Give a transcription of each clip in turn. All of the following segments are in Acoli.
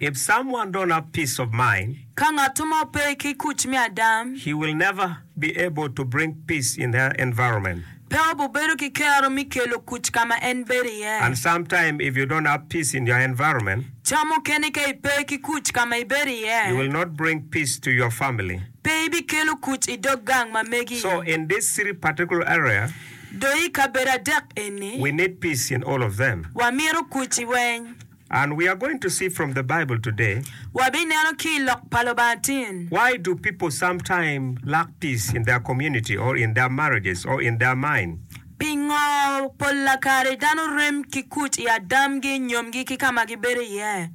If someone don't have peace of mind. Ka ngatto mo pe ki kuc me adam. He will never be able to bring peace in her environment. Pe obibedo ki kero me kelo kuc ka ma en bedo iye. And sometimes if you don't have peace in your environment. Ca mukene ka ipe ki kuc ka ma ibedo iye. You will not bring peace to your family. Pe ibikelo kuc i dog gang ma megi. So in these three particular area. Dong i kabedo adek eni. We need peace in all of them. Wamito kuc i weny. And we are going to see from the Bible today. Wabineno ki i Lok pa Lubanga tin. Why do people sometime lack peace in their community or in their marriages or in their mind? Pingo polla kare dano rem ki kuc i adamgi, nyomgi ki ka ma gibedo iye?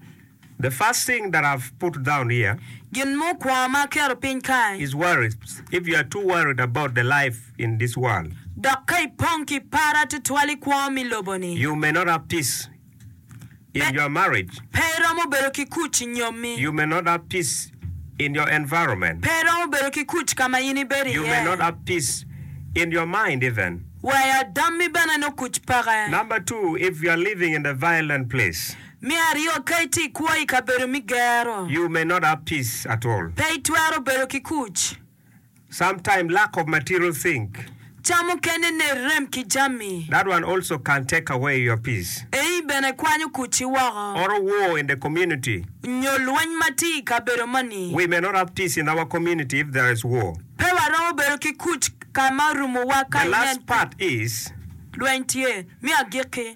The first thing that I've put down here. Gin mukwongo ma aketo piny kae. Is worries. If you are too worried about the life in this world. Dok ka ipong ki par atutwal i kwo mi lobo-ni. You may not have peace. in your marriage. Pe iromo bedo ki kuc i nyomi. You may not have peace in your environment. Pe iromo bedo ki kuc ka ma in ibedo iye. You may not have peace in your mind even. Wek adammi bene nongo kuc peke. Number two, if you are living in a violent place. Me aryo, ka itye ikwo i kabedo me gero. You may not have peace at all. Pe itwero bedo ki kuc. Some time lack of material think. Ca mukene ne rem ki jami. That one also can take away your peace. Eii bene kwanyo kucci woko. Or a war in the community. Nyo lweny ma tye i kabedo moni. We may not have peace in our community if there is war. Pe waromo bedo ki kuc ka ma orumowa ka inen. The last part is. Lweny tye. Me agikki,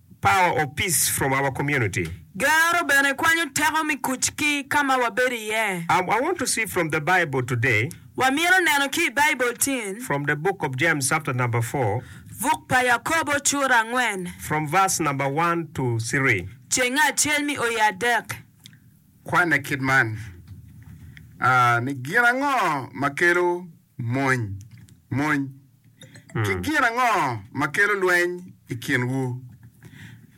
Power of Peace from Our Community. Gero bene kwanyo teko me kuc ki ka ma wabedo iye. I want to see from the Bible today. Wamito neno ki i Baibul tin. From the book of James chapter number four. Buk pa Yakobo cura angwen. From verse number one to three. Cenge acel mi oye adek. Kwane kit man, a, ni gin ango ma kelo Mony, Mony ki gin ango ma kelo lweny i kinwu?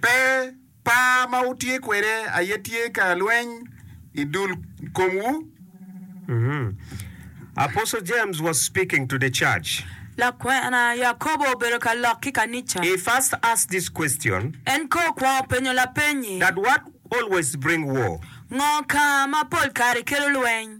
Pe, par ma wutye kwede aye tye ka lweny i dul komwu. Apostle James was speaking to the church. Lakwena Yakobo obedo ka lok ki kanica. He first asked this question. En ko okwongo penyo lapeny-nyi. That what always bring war? Ngo ka ma pol kare kelo lweny?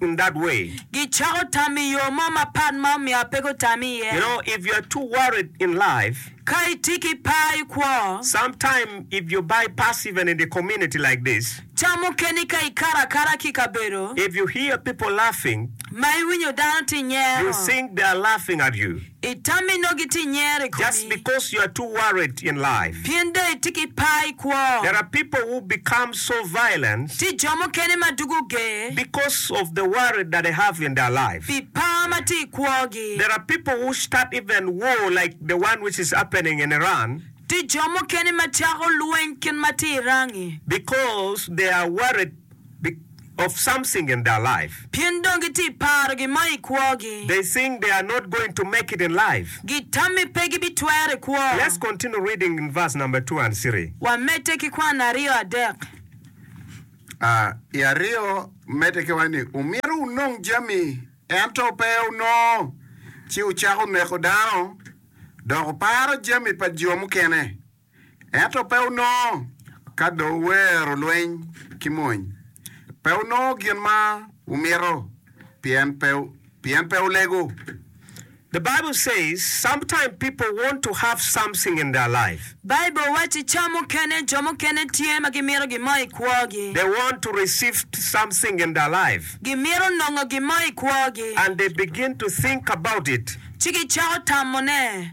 in that way. Gicako tam i yo mo mapat ma omyero pe gutam iye. You know, if you are too worried in life, Ka itye ki par i kwo. sometime if you bypass even in the community like this, Ca mukene ka ikato akata ki i kabedo if you hear people laughing, ma iwinyo dano tye you nyero. think they are laughing at you. Itami nongo gitye i nyer i komi. Just because you are too worried in life. Pien dong itye ki par i kwo. There are people who become so violent. Tye jo mukene ma dugo ger. Because of the worry that they have in their life. Pi par ma tye i kwogi. There are people who start even war like the one which is happening in Iran. Tye jo mukene ma cako lweny kit ma tye i Iran-ngi. Because they are worried. Be of something in their life. Pien dong gitye i paro gin mo i kwogi. They think they are not going to make it in life. Gitam ni pe gibitwero i kwo. Let's continue reading in verse number two and three. Wamedde ki kwano aryo adek. A. I aryo medde ki waco ni wumito wunong jami, ento pe wunongo, ci wucako neko dano, dok wuparo jami pa jo mukene. ento pe wunongo ka dong wuwero lweny ki mony. Pe wunongo gin ma wumito pien pe pien pe wulego. The Bible says sometimes people want to have something in their life. Bible wacci ca mukene jo mukene tye ma gimito gin mo i kwogi. They want to receive something in their life. Gimito nongo gin mo i kwogi. And they begin to think about it. Ci gicako tamone.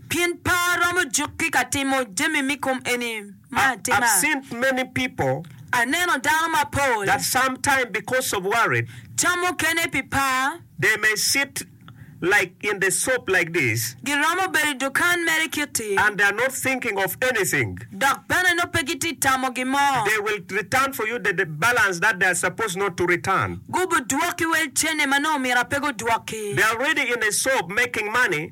Pien pe aromo jukki ka timo jami me kom eni ma I, I've atima. seen many people Aneno dano mapol, that sometime because of worried, ca mukene pi par, they may sit like in the shop like this giromo bedo i dukan mere kiti, and they're not thinking of anything. dok bene nongo pe gitye tamo gin mo. They will return for you the, the balance that they're supposed not to return. Gubidwokki wel cene ma nongo myero pe gudwokki. They're already in a shop making money.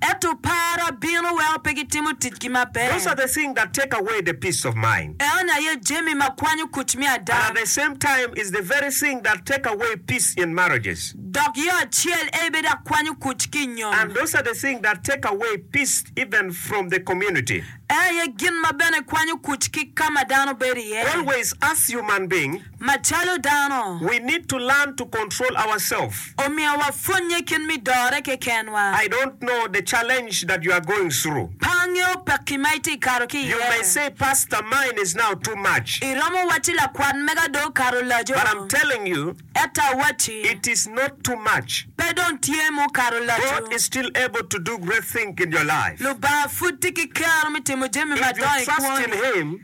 Ento para bino weko pe gitimo ticgi Those are maber. the thing that take away the peace of mind. Eno aye jami ma kwanyo kuc me ada. And at the same time is the very thing that take away peace in marriages. Dok yo acel eye bedo akwanyo kuc ki i nyom. And those are the thing that take away peace even from the community. En aye gin ma bene kwanyo kuc ki ka ma dano bedo iye. Always us human being. macalo dano. We need to learn to control ourself. Omiyo wapwonnye kit me dore kekenwa. I don't know the challenge that you are going through. Pe angeyo pekki ma itye kato ki iye. You may say Pastor mine is now too much. Iromo wacci lakwat mega dong okato laco. But I'm telling you. Ento awacci. It is not too much. Pe dong tye ma okato laco. God is still able to do great thing in your life. Lubanga pud tye ki kero me timo jami madongo i kwoni. If you trust in him.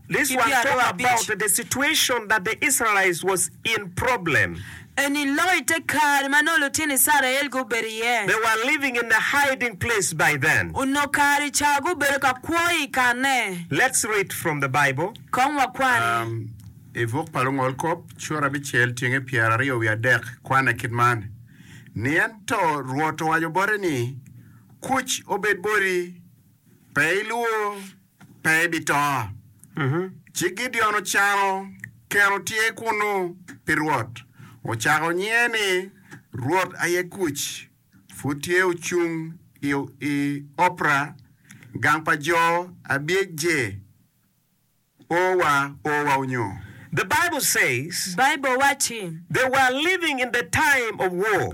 This ki one talk about pyerabic. the situation that the Israelites was in problem. Eni loyo te kare ma nongo lutino Icrael gubedo iye. They were living in a hiding place by then. Onongo kare i ca gubedo ka kwo i kanne. Let's read from the Bible. Kong wakwan. I buk pa Lungol Kop, Cura abicel tyenge pyeraryo wiye adek kwane kit man, Ni ento Rwot owaco bote ni, Kuc obed boti, pe ilwor. pe ebito. Ci Gideon ocano kero tye kunnu pi Rwot, ocako nyinge ni, Rwot aye kuc. Pud tye ocung i Opra, gang pa jo Abiecje, o wa, o wa onyo. The Bible says. Baibul wacci. They were living in the time of war.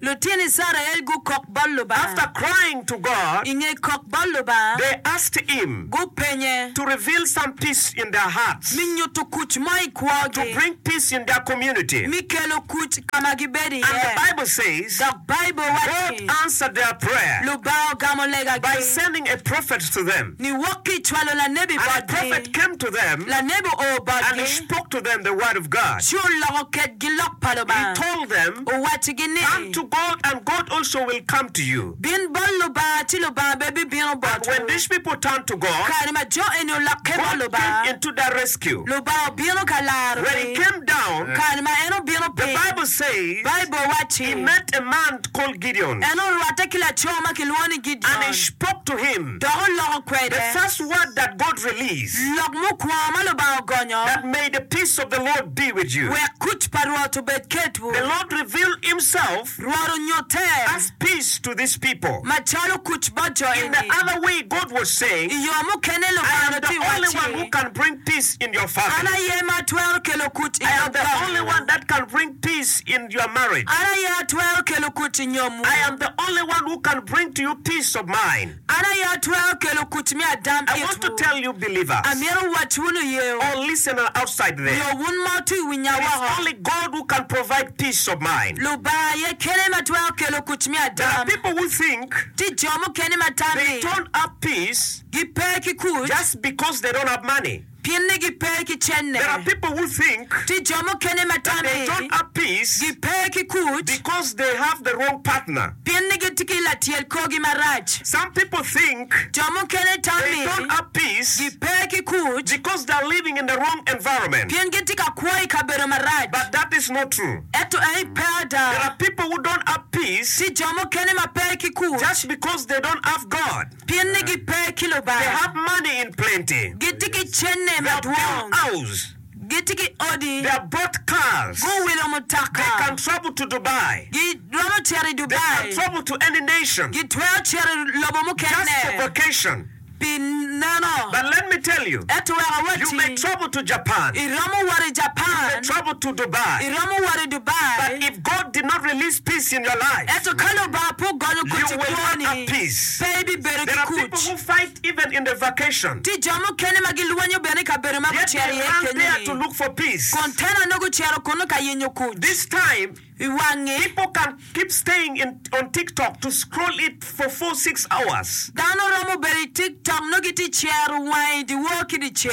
Lutino Icrael gukok bot Lubanga. After crying to God, I nge kok bot Lubanga, they asked Him gupenye to reveal some peace in their hearts, mi nyutu kuc mo i kwogi, to bring peace in their community. mi kelo kuc ka ma gibedo iye. And the Bible says, Dok Baibul waco God ni, answered their prayer Lubanga ogamo legagi. by sending a prophet to them. Niwok ki i cwalo lanebi botgi, lanebi oo botgi, ci oloko kedgi lok pa Lubanga, owaccigi ni, Bin bot Lubanga, ci Lubanga bene bibino botwu. Kare ma jo eni olokke bot Lubanga, Lubanga obino ka larogi. Kare ma en obino piny, Baibul wacci, En orwatte ki laco ma kilwongo ni Gideon. dok oloko kwede lok mukwongo ma Lubanga ogonyo, wek kuc pa Rwot obed kedwu. Rwot onyutte macalo kuc bot jo eni. I yo mukene Lubanga onongo tye wacci, An aye ma atwero kelo kuc i dog lobo-wu. your marriage. An aye atwero kelo kuc i nyomwu. I am the only one who can bring to you peace of mind. An aye atwero kelo kuc me adam I want to itwu. tell you believers Amyero wacciwu luyeyo. or listener outside there, Nyo wun ma otwi winya it is woko. only God who can provide peace of mind. Lubanga aye kene ma twero kelo kuc me There are adam. people who think Tye jo mukene ma they tammi don't have peace gipe ki kuc. just because they don't have money. Gin ni gi pe ki cene. There are people who think. Tye jo mukene ma that they don't tammi have peace gi pe ki kut. because they have the wrong partner. Pien ni gitye ki latyel korgi marac. Some people think. Jo mukene They tammi don't have peace gi pe ki kut. because they are living in the wrong environment. Pien gitye ka kwo i kabedo marac. But that is not true. Ento eni pe ada. There are people who don't have peace Tye jo mukene ma pe ki kut. just because they don't have God. Pien ni gipe ki Lubanga. Gitye ki cente madwong. Gitye ki odi. Guwilo mutoka. Giromo cito i Dubai. Gitwero cito i lobo mukene pi neno. Ento wek awacci, iromo wot i Japan. Iromo wot i. Ento ka Lubanga pe ogonyo koti kwoni, pe ibibedo ki kuc. Tye jo mukene ma gilwenyo bene i kabedo ma gucito iye kenyoni, kun tenone gucito kunnu ka yenyo kuc. I wangi, dano romo bedo i TikTok nongo gitye ka cero wangi dyewor ki dyeceng.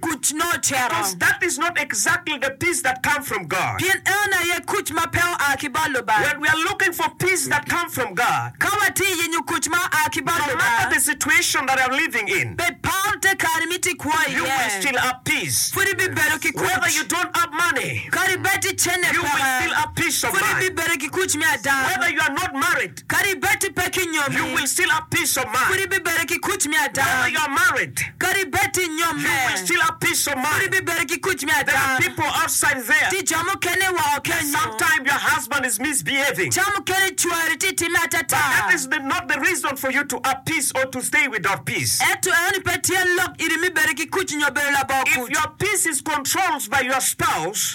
Kuc nongo ocito. Pien en aye kuc ma pe oa ki bot Lubanga. Ka watye i yenyo kuc ma oa ki bot Lubanga, bed par te kare ma itye kwo iye, pud ibibedo ki kuc. Kadi bed ticenne peke, pud ibibedo ki kuc me ada. Kadi bed ipe ki nyomi, pud ibibedo ki kuc me ada. Kadi bed inyomme, pud ibibedo ki kuc me ada. Tye jo mukene woko kenyu, ca mukene cwari tye timme atata. Ento enoni pe tye lok iri me bedo ki kuc nyo bedo labongo kuc.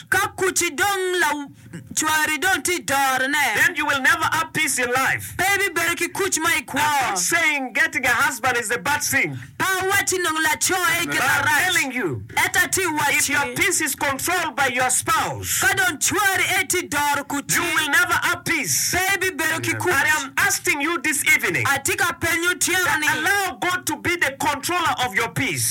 Ka kucci dong Cwari dong tye dorone. Then you will never have peace in life. Pe ibibedo ki kuc mo i kwo. A good saying, Getting a husband is a bad thing. Pe awacci nongo laco aye gin arac. But I'm telling you. Ento atye ka wacci. If your peace is controlled by your spouse. Ka dong cwari aye tye doro kuci. You will never have peace. Pe ibibedo ki kuc. I am asking you this evening. Atye ka penyo otyeno-ni. That allow God to be the controller of your peace.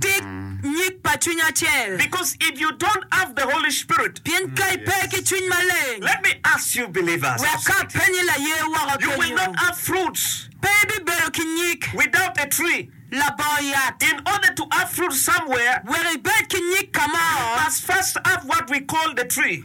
Tic nyig pa cwiny acel. Because if you don't have the Holy Spirit. Pien ka ipe ki Cwiny Maleng. Let me ask you believers. Wek apenyi laye woko kenyo. You will not have fruits. Pe ibibedo ki nyig. Without a tree. Labongo yat. In order to have fruits somewhere. Wek ibed ki nyig ka mo. You must first have what we call the tree.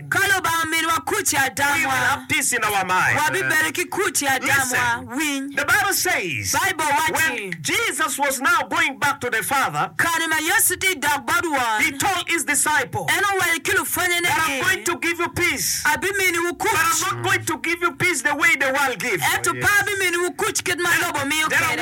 Ka Lubanga omiyowa kuc i adamwa, wabibedo ki kuc i adamwa. Winy! Baibul wacci, Kare ma Yecu tye dok bot Won, en owaco ki lupwonnyene ni, Abiminiwu kuc, ento pe abiminiwu kuc kit ma lobo miyo kwede.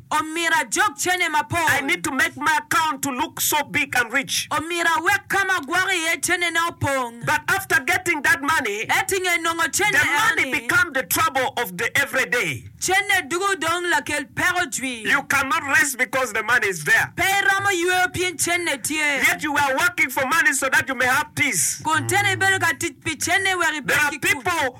Omyero ajog cene mapol. I need to make my account to look so big and rich. Omyero awek ka ma agwoko iye cenena opong. But after getting that money. Ento i nge nongo cene eno-ni. The money become the trouble of the every day. Cene dwogo dong lakel peko jwi. You cannot rest because the money is there. Pe iromo yweyo pien cene tye. Yet you are working for money so that you may have peace. Kun cene ibedo ka tic pi cene wek ibed ki kut. There are people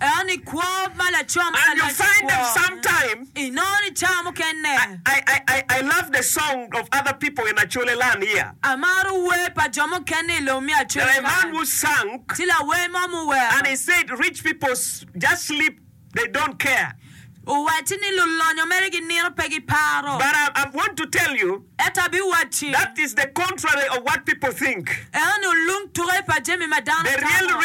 En i kwo ma laco ma ka lwacci i kwo, inongo ni cawa mukene. Amaro wer pa jo mukene i lobo me Acerikac. Tye lawer mo ma owero. Owacci ni lulonyo mere ginino pe giparo. Ento abiwacci, Eno ni olung tuke pa jami ma dano tamo.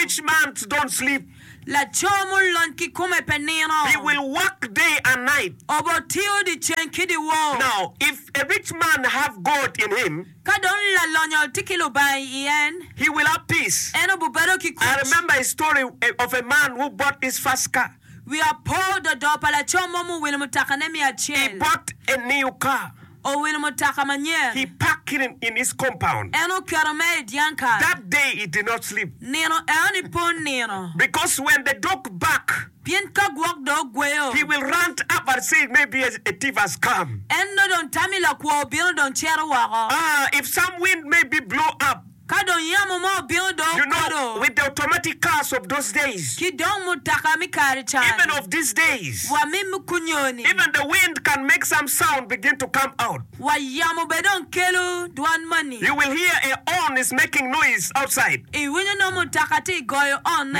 Laco mulony kikome pe nino. He will work day and night. Obotiyo dyeceng ki dyewor. Now if a rich man have gold in him. Ka dong lalonyo tye ki Lubanga i en. He will have peace. En obibedo ki kuc. I remember a story of a man who bought his first car. Wiya po dodo pa laco mo muwilo mutakane me acel. He bought a new car. owilo mutaka manyen. He parked in in in his compound. En oketo mere i dyang kare. That day he did not sleep. Nino eno-ni pe onino. Because when the dog bark. Pien ka gwok dong ogweyo. He will run up and say, Maybe a a thief has come. En nongo dong tamo i lakwo obino dong cito woko. Ah, if some wind maybe blow up. Ka dong yamo mo obino do okodo. Ki dong mutoka me kare cani. Wa mi mukunyoni. Wa yamo bene dong kelo dwan mani. Iwinyo nongo mutoka tye goyo onne.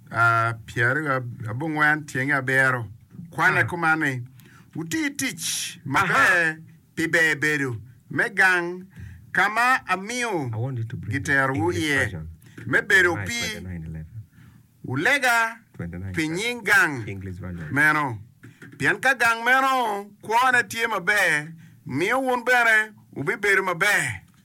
pyeraryo abongwen tyenge abiro. Kwane kuman ni, Wuti tic maber pi ber bedo me gang ka ma amiyo giterowu iye me bedo opii. Wulega pi nying gang meno, pien ka gang meno kwone tye maber, miyo wun bene wubibedo maber.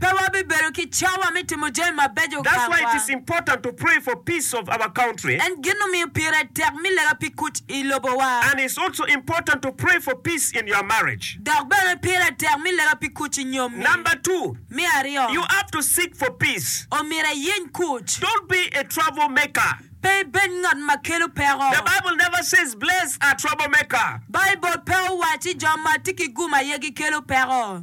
Pe wabibedo ki cawa me timo jami mabeco kacwa. En gin omiyo pire tek mi lega pi kuc i lobowa. Dok bene pire tek mi lega pi kuc i nyommi. Me aryo, omyero iyeny kuc. Pe ibed ngat ma kelo peko. Baibul pe owacci jo ma tye ki gum aye gikelo peko.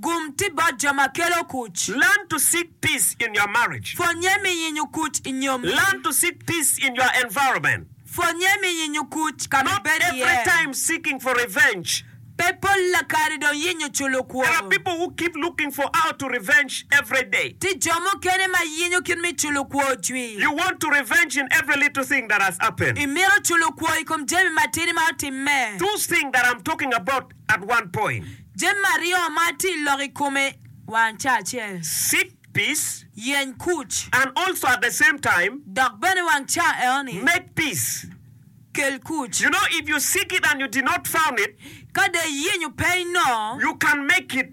Gum ti bot jo ma kelo kuc. Learn to seek peace in your marriage. Pwonnye mi yenyo kuc i nyommi. Learn to seek peace in your environment. Pwonnye mi yenyo kuc ka ma ibedo iye. Not every time seeking for revenge. Pe polla kare dong yenyo culo kwor. There are people who keep looking for how to revenge every day. Ti jo mukene ma yenyo kit me culo kwor cwi. You want to revenge in every little thing that has happened. Imito culo kwor i kom jami matidi ma otimme. Those thing that I'm talking about at one point. Jami aryo ma atye i lok i kome wang ca acel. Seek peace. Yeny kuc. And also at the same time. Dok bene wang ca enoni. Make peace. Kel kuc. You know if you seek it and you did not found it. Ka dong iyenyo pe inongo. You can make it.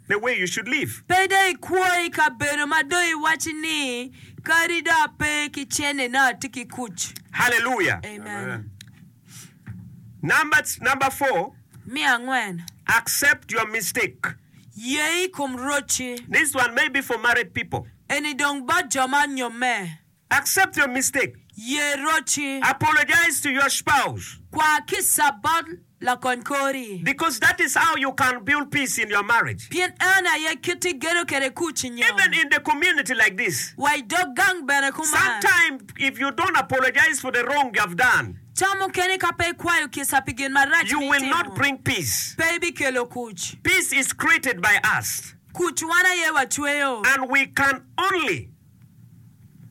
the way you should live. Pe dong ikwo i kabedo ma dong iwaci ni, Kadi dong ape ki cene nongo atye ki kuc. Hallelujah. Amen. Number number four. Me angwen. Accept your mistake. Ye i kom rocci. This one may be for married people. Eni dong bot jo ma onyomme. Accept your mistake. Ye roci. Apologize to your spouse. Kwa kica bot lakony kori. Because that is how you can build peace in your marriage. Pien eno aye kit igedo kwede kuc i nyom. Even in the community like this. Wa i dog gang bene kuman. Sometime if you don't apologize for the wrong you have done. Ca mukene ka pe ikwayo kica pi gin marac mi itimo. You will not bring peace. Pe ibikelo kuc. Peace is created by us. Kuc wan aye wacweyo. And we can only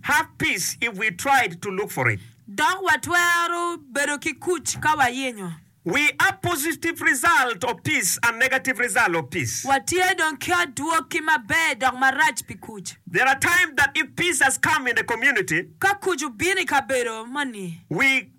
have peace if we tried to look for it. Dok watwero bedo ki kuc ka wayenyo. We are positive result of peace and negative result of peace. Watye dong ki adwoki maber dok marac pi kuc. There are times that if peace has come in a community. Ka kuc obino i kabedo moni. We.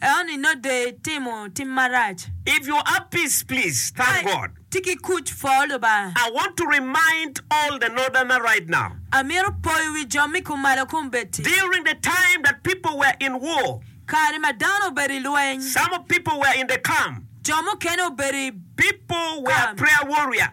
Eoni not de itimo tim marac. If you have peace please thank Ka God. itye ki kuc pwoo Lubanga. I want to remind all the northerner right now. Amito poyo wi jo me kumalo kombeddi. During the time that people were in war. Kare ma dano obedo i lweny. Some of people were in the camp. Jo mukene obedo i People were camp. prayer warrior.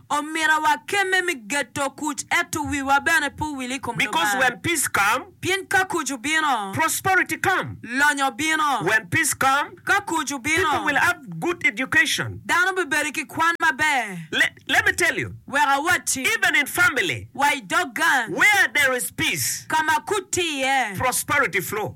Omira wa kemme mi geto kuc eto wiwa bene pe owil i kom Lubanga. Because when peace come. Pien ka kuc obino. Prosperity come. Lonyo bino. When peace come. Ka kuc obino. People will have good education. Dano bibedo ki kwan maber. Le, let me tell you. Wek awatti. Even in family. Wa i dog gang. Where there is peace. Ka ma kuc tye iye. Prosperity flow.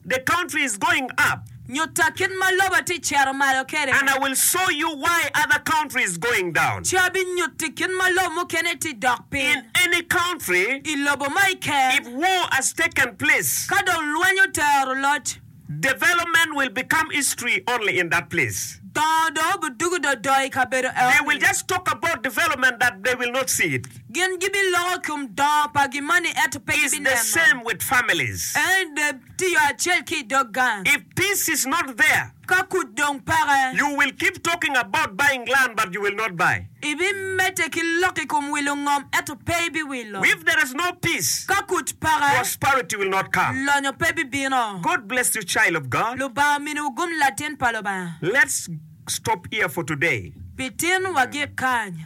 The country is going up. Nyutta kit ma lobo tye ka cito malo kwede. And I will show you why other country is going down. Ci abinyutti kit ma lobo mukene tye ka dok piny. In any country. I lobo ma i ker. If war has taken place. Ka dong lweny otero loc. Development will become history only in that place. Dongo dong obidugo dodo i kabedo eno-ni. They will just talk about development but they will not see it. Gin gibiloko i kom dongo pa gin moni ento pe gibineno. Ka kuc dong peke. Ibimedde ki lok i kom wilo ngom ento pe ibiwilo. Ka kuc peke. Lonyo pe bibino. Lubanga ominiwu gum latin pa Lubanga. Pi tin wagik kany.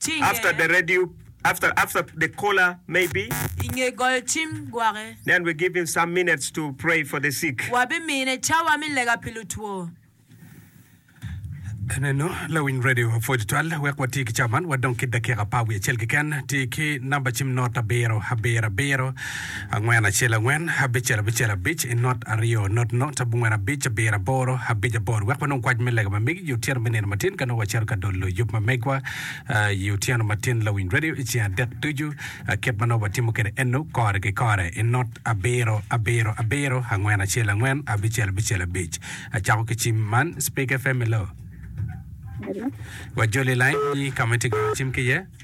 Ci After the iye. radio, after after the caller maybe. I nge goyo cim gwake. Then we give him some minutes to pray for the sick. Wabimine cawa me lega pi lutwo. Eneno lawiny radio apwoyo tutwal wek wati ki cawa man wa dong ki dakika apar wiye acel keken. Ti ki namba cim not abiro abiro abiro. Angwen acel angwen, abicel abicel abic, i not aryo not not abongwen abic abiro aboro abic aboro wek wanong kwac me lega ma megi i otyeno me nino matin ka nongo wacito ka dolo yub ma megwa i otyeno matin lawiny radio i ceng adek ducu kit ma nongo watimo kwede eno kore ki kore i not abiro abiro abiro angwen acel angwen abicel abicel abic acako ki cim man Speak FM hello Hello. wajoli liny nyi ka ma itye ka goyo cim ki iye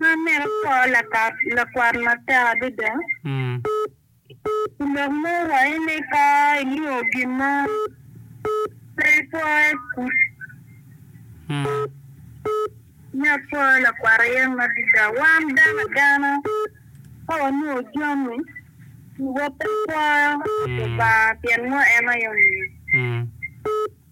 Man mito kor lakwan matek adada. I lok mo waco ni ka inongo gin mo pe ipwoye kuc me apwoya lakwat aye madada. Wan dano agana ka wanongo jami wa pe pwoyo Lubanga pien ngo en aye omiyo.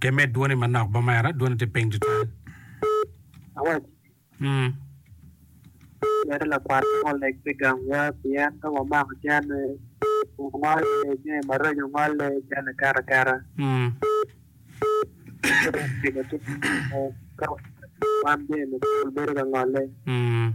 Te med dwoni manok bot mera, dwoni tye piny tutwal. Awaci, Mm. Mere lakwat mo oleg pi gangwa pien ka wamako cene ongolle, jami maraco ongolle, cene kato akata. Mm. Pi lacen mo, ka wan jami mapol bedo ka ngolle. Mm.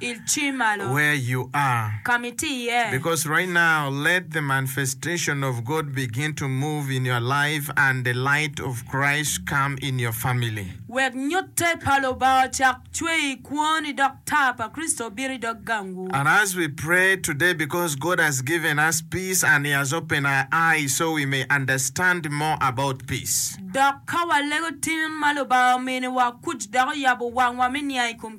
Ilci malo. Where you are. Ka ma itye iye. Because right now let the manifestation of God begin to move in your life and the light of Christ come in your family. Wek nyutte pa Lubanga ocak cwer i kwoni dok taa pa Kricito obit i dog gangwu. And as we pray today because God has given us peace and he has opened our eyes so we may understand more about peace. Dok ka walego tin ma Lubanga ominiwa kuc dok oyabo wangwa me niang i kom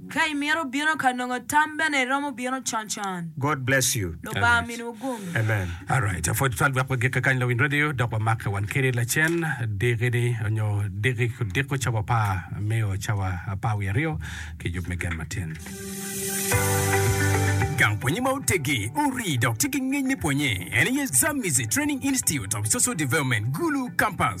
Ka imito bino ka nongo tam bene iromo bino con con. God bless you. Lubanga miniwu gum. Amen. Alright, apwoc twal wek wagike kany lawiny radio dok wamake wan keni lacen diki ni onyo diki diko cawa pa meo cawa apar wiye aryo ki yub me gen matin. Gang pwonye ma otegi, ori dok tye ki ngec me pwonye en aye Zamizi Training Institute of Social Development, Gulu Campus.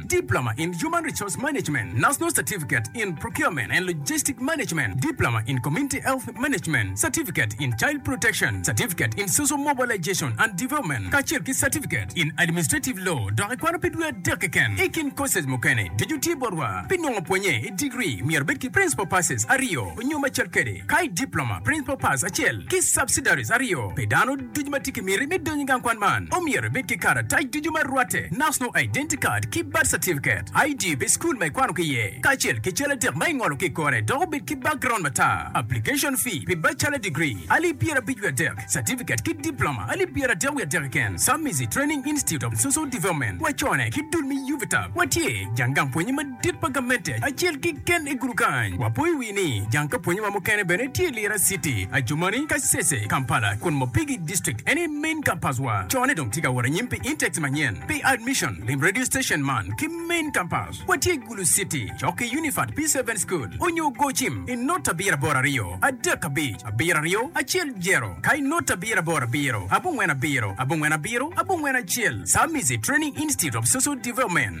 Diploma in Human Resource Management, National Certificate in Procurement and Logistic Management, Diploma in Community Health Management, Certificate in Child Protection, Certificate in Social Mobilization and Development, kacel ki Certificate in Administrative Law, dok ikwano pi dwe adek keken. I kin courses mukene, ducu tye botwa. Pi nongo pwonye i degree, myero ibed ki Principal Passes aryo nyo macel kwede, ka i Diploma, Principal Pass acel, ki Subsidiaries aryo pi dano. Ducu ma tye ki miti me donyo i gang kwan man omyero ibed ki karatac ducu ma rwatte, National Identity Card ki Birth Certificate, ID pi cukul ma ikwano ki iye, kacel ki cal adek ma ingolo ki i kore dok obed ki background matar. Application fee pi bachelor degree, alip pyerabic wiye adek, certificate ki diploma, alip pyeradek wiye adek keken, Submizi Training Institute of Social Development, wacone ki dul me UVTAB, watye jang gang pwonye madit. Tit pa gamente acel kiken i gudu kany. Wapo i wi ni jang ka pwonye wa mukene bene tye Lira City, Ajumani, Kasese, Kampala, kun Mopigi District en aye main campus wa. Cone dong tye ka wot anyim pi intakes manyen. Pi admission, lim radio station man ki main campus. Watye i Gulu City, cok ki Unified P-Seven School onyo go cim i not abiro aboro aryo, adek abic, abiro aryo, acel jero, ka i not abiro aboro abiro, abongwen abiro, abongwen abiro, abongwen acel, Samizi Training Institute of Social Development.